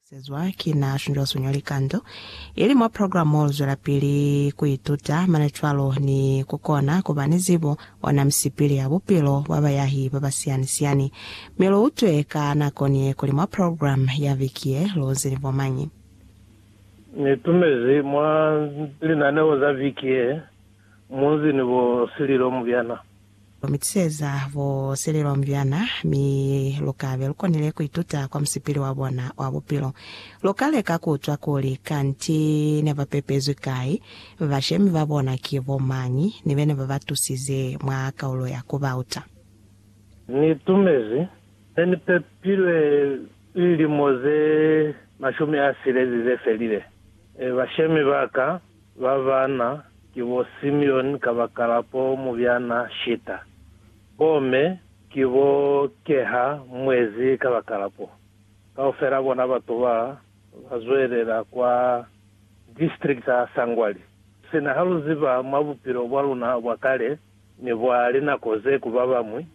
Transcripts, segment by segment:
Sezwa ki na shunzwa suñwa likando ili mwa programu Zwelapili ku Ituta, mane cwalo ni ku kona ku ba ni zibo ona misipili ya bupilo bwa bayahi ba ba siyani-siyani. Mi lu utwe ka nako ni ye kuli mwa programu ya viki ye lu nzi ni bo mañi. Ni tumezi mwa linaneo za viki ye munzi ni bo Sililo Mubyana. Mi tuseza bo Sililo Mubyana, mi lu ka be lu konile ku ituta kwa musipili wa bona wa bupilo. Lu ka leka ku utwa kuli kanti ne ba pepezwi kai, bashemi ba bona ki bo mañi, ni bene ba ba tusize mwa kaulo ya ku ba uta. Ni tumezi ne ni pepilwe Lilimo ze mashumi a silezi ze felile, bashemi ba ka ba bana ki bo Simeoni kabakala po mubyana Shita, bo me ki bo Keha mwezi kabakala po. Kaufela bona batu ba ba zwelela kwa district za Sangwali. Sina ha lu ziba mwa bupilo bwa luna bwa kale ni bwa linako ze ku ba bañwi,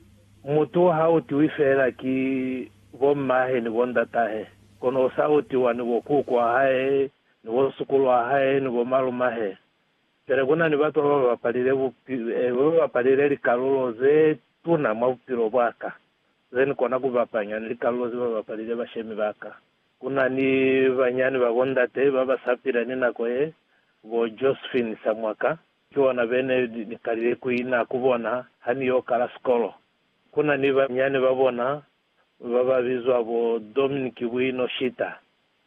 mutu ha u tiwi feela ki bo mmahe ni bo ndatahe, kono u sa utiwa ni bo kuku wa hae, ni bo sukulu wa hae, ni bo malumahe. Pele ku na ni batu ba ba bapalile bupi, eh, ba ba bapalile likalulo ze tuna mwa bupilo bwa ka, ze ni kona ku bapanya ni likalulo ze ba bapalile bashemi ba ka. Ku na ni banyani ba bo ndate ba ba sa pila ni nako ye, bo Josephine Samwaka, ki bona be ne ni kalile ku ina ku bona ha ni yo kala sikolo. Ku na ni banyani ba bona ba ba bizwa bo Dominic Bwino Shita,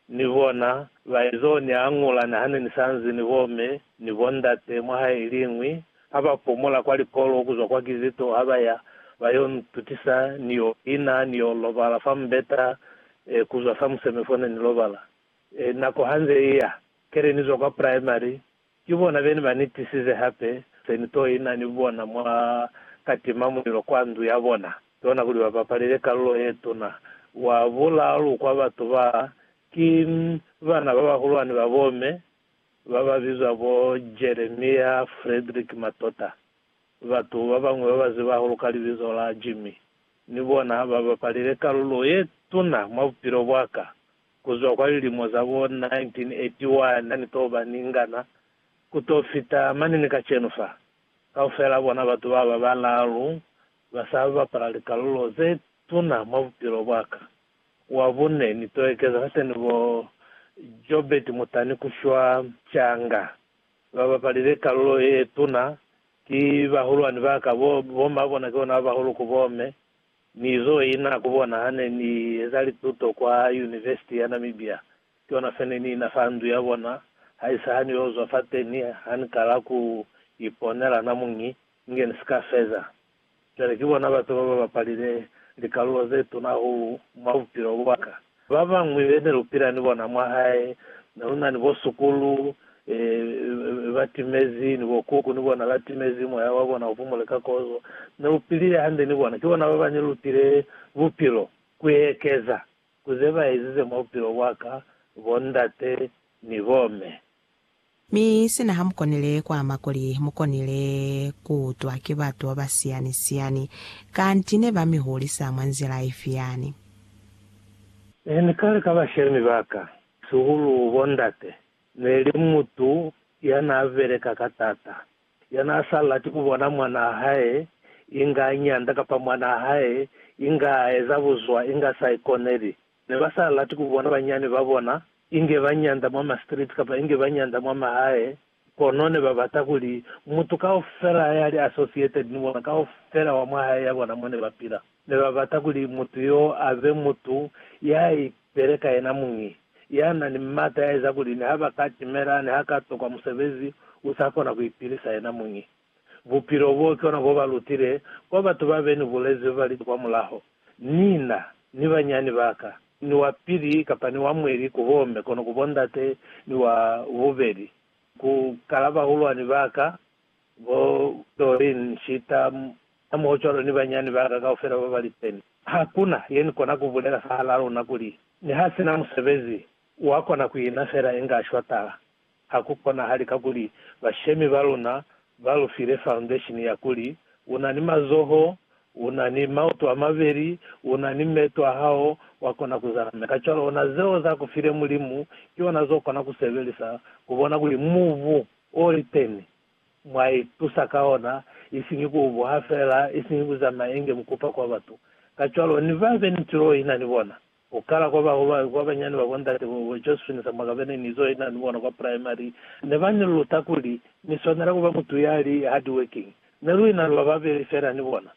ni bona ba ez'o ni añula ni ha ne ni sa nzi ni bo me ni bo ndate mwa hae iliñwi, ha ba pumula kwa likolo ku zwa kwa Kizito ha ba ya ba y'o ntutisa ni y'o ina ni y'o lobala fa mubeta e ku zwa samuseme fo ne ni lobala. E, nako ha nze i ya, kele ni zwa kwa Primary, Ki bona bene ba ni tisize hape seni to ina ni bona mwa ka tima mulilo kwa ndu ya bona yona kuli ba bapalele kalulo ye tuna. Wa bulalu kwa batu ba ki bana ba bahulwani ba bo me ba ba bizwa bo Jeremia Frederick Matota. Batu ba bañwi ba ba ziba hahulu ka libizo la Jimmy ni bona ba bapalele kalulo ye tuna mwa bupilo bwa ka. Ku zwa kwa lilimo za bo 1981 ha ni to ba ni ngana, ku to fita mane ni kacenu fa, kaufel'a bona batu ba ba balaalu ba sa bapala likalulo ze tuna mwa bupilo bwa ka. Wa bune, ni to ekeza fateni bo Jobert Mutani ku shwa canga. Ba bapalile kalulo ye tuna ki bahulwani ba ka, bo ma bona ki bona ba bahulu ku bo me. Mi zo i na ku bona ha ne ni eza lituto kwa Univesiti ya Namibia, ki ona fe ne ni na fa ndu ya bona, haisa ha ni yo zwa fateni, ha ni kala ku iponela na muñi, inge ni si ka feza. Cwale ki bona batu ba ba bapalile likalulo ze tuna hahulu mwa bupilo bwa ka. Ba bañwi be ne lu pila ni bona mwa hae ne lu na ni bo sukulu ba timezi ni bo kuku ni bona ba timezi, moya wa bona u pumule ka kozo. Ne lu pilile hande ni bona. Ki bona ba ba ne lu pile bupilo ku ekeza ku ze ba ezize mwa bupilo bwa ka, bo ndate ni bo me. Mi sina ha mukonile ku ama kuli mukonile ku utwa ki batu ba ba siyani siyani, kanti ne ba mi hulisa mwa nzila ifi yani? Ne ni kale ka bashemi ba ka, sihulu bo ndate, ne li mutu ya na beleka ka tata, ya na sa lati ku bona mwana a hae inga a nyanda kapa mwana a hae inga a eza buzwa inga sa ikoneli, Ne ba sa lati ku bona banyani ba bona, inge ba nyanda mwa ma street kapa inge ba nyanda mwa mahae, kono ne ba bata kuli mutu kaufela ya li associated ni bona kaufela wa mwa hae ya bona mo ne ba pila. Ne ba bata kuli mutu yo a be mutu ya ipele ka yena muñi, ya na ni mata ya eza kuli ni ha ba ka timela ni ha ka tokwa musebezi, u sa kona ku ipilisa yena muñi. Bupilo boo ki ona bo ba lutile kwa batu ba be ni bulezi ba li kwa mulaho. Ni na, ni banyani ba ka, ni wa pili kapa ni wa mweli ku bo me kono ku bo ndate ni wa bubeli ku kala bahulwani ba ka, bo Doreen, Nshita, hamohocwalo ni banyani ba ka kaufela ba ba li teni. Ha ku na ye ni kona ku bulela fahalaa luna kuli, niha si na musebezi, wa kona ku ina fela inga a shwatala. Ha ku konahali kakuli bashemi ba luna ba lu file foundation ya kuli, U na ni mazoho, u na ni maoto a mabeli, u na ni meeto a hao, wa kona ku zala mi kacwalo ona zeo za ku file Mulimu ki ona zo kona ku sebelisa ku bona kuli mubu o liteni mwa i tusa ka ona, isiñi ku u buha fela, isiñi ku zamaya inge mukupa kwa batu. Kacwalo ni ba be ni tulo ina ni bona. Ku kala kwa ba ba kwa banyani ba bo ndate bo bo Josephine Samuakabe ne ni zo ina ni bona kwa primary, ne ba ni luta kuli ni swanela ku ba mutu ya li hard working. Ne lu ina lu ba babeli fela ni bona.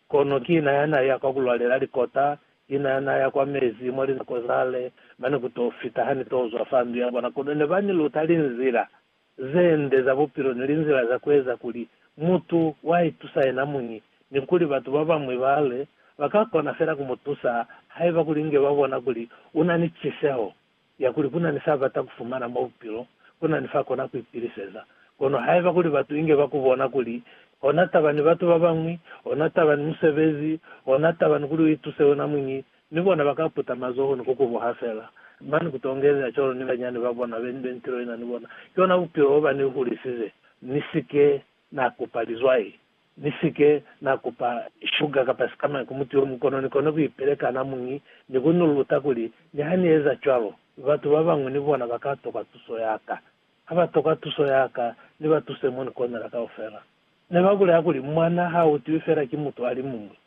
Kono ki na ya na ya kwa ku lwalela likota, ki na ya na ya kwa mezi mwa linako zale, mane ku t'o fita ha ni t'o zwa fa ndu ya bona. Kono ne ba ni luta linzila ze nde za bupilo ni linzila za ku eza kuli mutu wa itusa yena muñi, ni kuli batu ba bañwi ba le ba ka kona fela ku mu tusa haiba kuli inge ba bona kuli u na ni ciseho ya kuli ku na ni s'a bata ku fumana mwa bupilo, ku na ni f'a kona ku ipiliseza. Kono haiba kuli batu inge ba ku bona kuli ona taba ni batu ba bañwi, ona taba ni musebezi, ona taba ni kuli u ituse wena muñi, Ni bona ba ka puta mazoho ni ku kubuha fela. Mani ku tongelela cwalo ni banyani ba bona be ni be ni tilo ina ni bona. Ki ona bupilo bo ba ni hulisize. Ni si ke na kupa lizwai. Ni si ke na kupa shuga kapa sikamañi ku mutu yo muñwi, kono ni kona ku ipeleka na muñi ni ku ni luta kuli niha ni eza cwalo, batu ba bañwi ni bona ba ka tokwa tuso ya ka. Ha ba tokwa tuso ya ka, ni ba tuse mo ni konela kaufela. Ne ba bulela kuli, Mwa na ha utiwi fela ki mutu a li muñwi.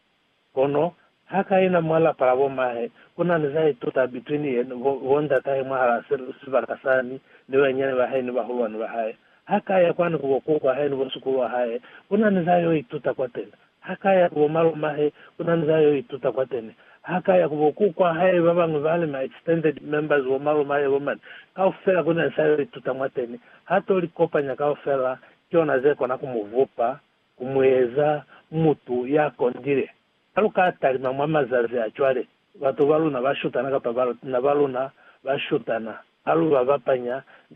Kono ha ka yena mwa lapa la bo mahe, ku na ni za ituta between yena, bo, bo ndatahe mwahalaa se, sibaka sani, ni bayinyani ba hae ni bahulwani ba hae. Ha ka ya kwani ku bo kuku wa hae ni bo sukulu wa hae, ku na ni za yo ituta kwateni. Ha ka ya ku bo malomahe, ku na ni za yo ituta kwateni. Ha ka ya ku bo kuku wa hae, ba bañwi bali ma extended members, bo malomahe, bo mani, kaufela ku na ni sa yo ituta mwateni. Ha to li kopanya kaufela, ki ona ze kona ku mu vupa ku mu eza mutu ya kondile. Ha lu ka talima mwa mazazi a cwale, batu ba luna ba shutana kapa bana ba luna ba shutana ha lu ba bapanya ni bona.